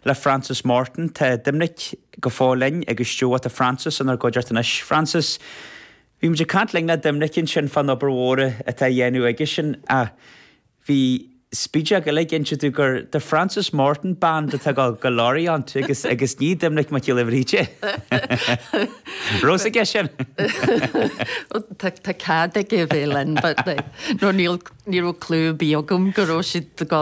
le Frances Morton. Tá Doimnic go fóill linn agus sa stiúideo tá Frances inár gcuideachta anois. Frances, bhí muid ag caint linn le Doimnic ansin fán obair mhór atá á dhéanamh aigesean ach bhí spídeog eile ag insint dó gur The Frances Morton Band atá ag gabháil go Lorient agus agus ní Doimnic Mac Giolla Bhríde. Raibh a fhios aige sin. Tá tá cead aige a bheith linn but like nó níl ní raibh clue ar bith agam go raibh siad go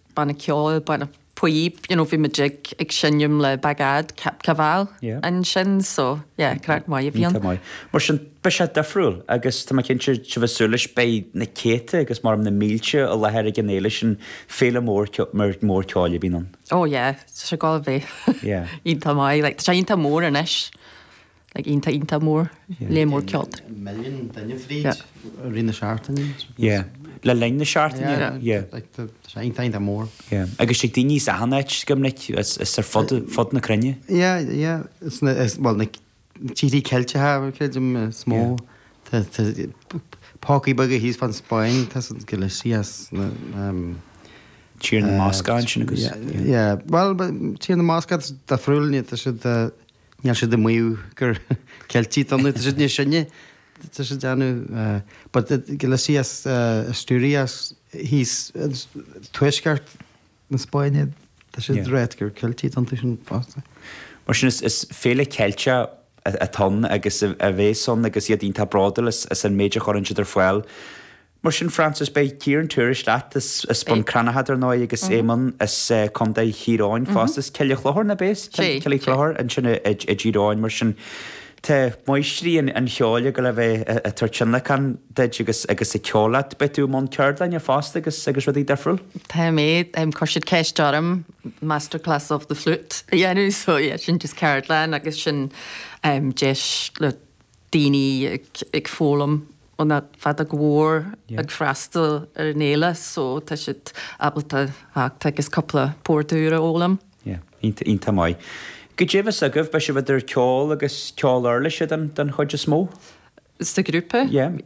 banna ceoil, banna píob, you know, bhí muid ag ag seinm le Bagad Cap Caval Yeah. ansin so yeah craic mhaith a bhí ann. Tá maith. Mar sin beidh sé difriúil agus tá mé cinnte sibh ag súil leis beidh na céadta agus maram na mílte i láthair ag an fhéile sin féile mhór mhór ceoil a bhíonn ann. Oh yeah, tá sé ag gabháil a bheith. Yeah. Iontach maith, like tá sé iontach mór anois. Like iontach iontach mór. Léar mór ceolta. Milliún duine fríd i rith na seachtaine. Yeah. Le linn na seachtaine. Yeah. Yeah. Like tá sé iontach iontach mór. Yeah. Agus tig daoine as achan áit go minic as ar fud fud na cruinne. Yeah. Yeah. As na as bhuel na tíorthaí Ceilteacha creidim is mó. Tá tá pócaí beaga thíos fán Spáinn tá Galicia is na ehm Tír na mBascach ansin agus. Yeah. Yeah. Bhuel tá Tír na mBascach difriúil ní tá siad Níl siad ag maíomh gur Ceiltigh iad, tá siad níos sine, tá siad ag déanamh, but Galicia is Asturias is thíos as tuaisceart na Spáinne, tá siad ag rá gur Ceiltigh iadsan fosta. Mar sin is féile Cheilteach atá ann agus a bhéas ann agus iad iontach bródúil as an méid a chuireann siad ar fáil Mar sin, Frances, beidh Ciarán Tourish leat as Bun Cranncha dar ndóigh agus Éamonn as Contae Thír Eoghain fosta. As Coillidh Chlochair, nab é? Is é. Coillidh Chlochair ansin i dTír Eoghain mar sin tá máistrí an cheoil ag gabháil a bheith ag tabhairt tionlacan duit agus ag ceol leat. Beidh tú i mbun ceardlainne fosta agus rudaí difriúil? Tá mé, chuir siad ceist orm masterclass of the flute a dhéanamh so yeah sin just ceardlann agus sin deis le daoine ag foghlaim an fheadóg mhór ag freastal ar an fhéile so tá siad ábalta a theacht agus cúpla port úr a fhoghlaim. Yeah, iontach maith. Cad é a bheas agaibh, beidh sibh idir ceol agus ceol uirlise den chuid is mó? Sa ghrúpa? Yeah.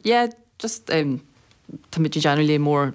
Yeah, just táimid ag déanamh léar mór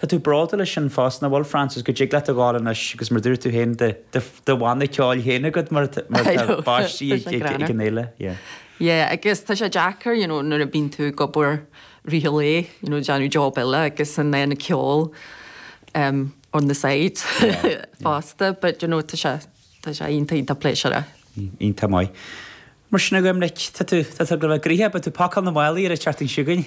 Tá tú bródúil as sin fosta, nach bhfuil, Frances? Go dtig leat a ghabháil anois agus mar a dúirt tú féin, do, do, do bhanna ceoil féin agat mar atá, mar atá báistí ag, ag, ag an fhéile. Yeah. Yeah, agus tá sé deacair, you know, nuair a bíonn tú ag obair i rith an lae, you know, déanamh job eile agus ag déanamh ceol um, on the side yeah, yeah. fosta, but you know, tá sé, tá sé iontach iontach pléisiúra. Iontach maith. Mar sin agaim leit, tá tú, tá tú ag gabháil a bheith gnoitheach, beidh tú ag pacáil na málaí ar an Déardaoin seo chugainn.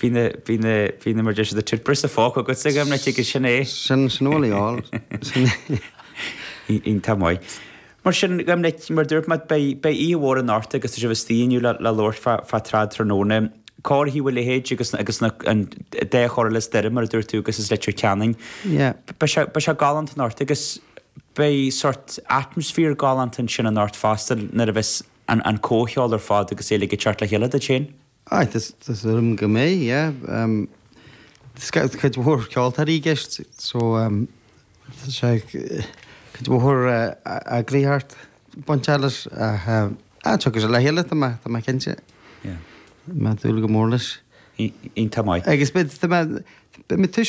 Bhí na, bhí na, bhí na mar deir siad a tirpire sa phóc agatsa ag imreacht aige, sin é? Sin, sin amhail í, áil, sin é. Iontach maith. Mar sin, ag imreacht, mar a dúirt mé, beidh, beidh oíche mhór in Árta agus tá sibh istigh inniu le, le labhairt fá, fá trad tráthnóna. Cá raibh thú a leithéid agus na, agus na, an, dea-cheol le Doire mar a dúirt tú agus as Leitir Ceanainn. Yeah. Beidh sé, beidh sé galánta in Árta agus beidh sórt atmaisféar galánta ansin in Árta fosta nuair a bheas an, an comhcheol ar fad agus é ag teacht le chéile duit féin. Aye, tá súil agam go mbeidh, yeah. Tá cuid mhór ceoltóirí i gceist so tá sé, cuid mhór eagraíocht bainteach leis ach ah, tiocfaidh sé le chéile tá mé, tá mé cinnte. Yeah. Tá mé ag dúil go mór leis. Iontach maith. Agus beidh, beidh mé, beidh mé